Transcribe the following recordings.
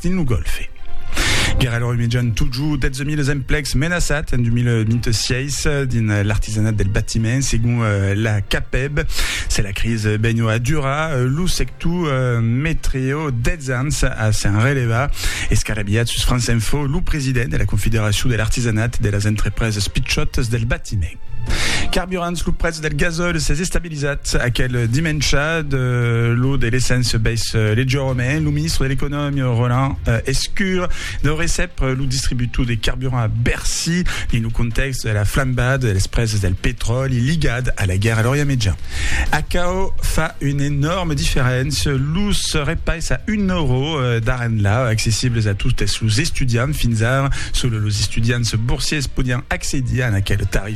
dins lo Gòlfe. Guèrra lor imejan totjor 12.000 es emplecs menaçats en 2026 dins l'artisanat del batiment, segon la CAPEB. Se la cris benho a durar, lo sector metreo 10 ans a s'en relevar. Escarabilhat sus France Info, lo president de la Confederacion de l'artisanat de las entrepreses pichòtas del batiment. Carburants, lo prètz del gasòl s'es estabilizat. Lisat aquel dimèncha de lo de l'essence bèis Legiòme, lo ministre de l'Economia Roland Lescure deu recep lo distributor de carburant a Bercy dins lo contèxt de la flambada de las presas del petròli ligat a la guèrra a l'Orient Mejan. Aquò fa una enòrma diferéncia, los repais a un euro d'ara enlà, accessibles a totes los estudiants, fins ara sols los estudiants borsiers podián accedir a aquel tarif.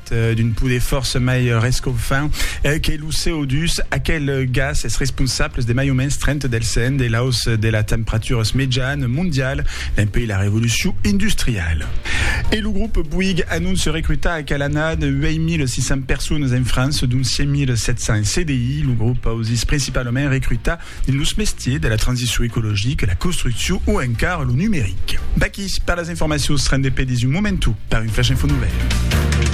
d'un poder fòrça mai rescofant que lo CO2, aquel gas es responsable de mai o mens 30 del cent de l'aus de la temperaturas mejan mondial dempuèi la revolucion industriala. E lo grop Bouygues anonce recrutar a Calanat 8.600 personas en França, dont 5.700 en CDI. Lo grop ausís principalament recrutar dins los mestiers de la transicion ecologica, la construccion o encara lo numeric. D'aquí per las informacions rendez-pe dins un momentu per un flash info novèl.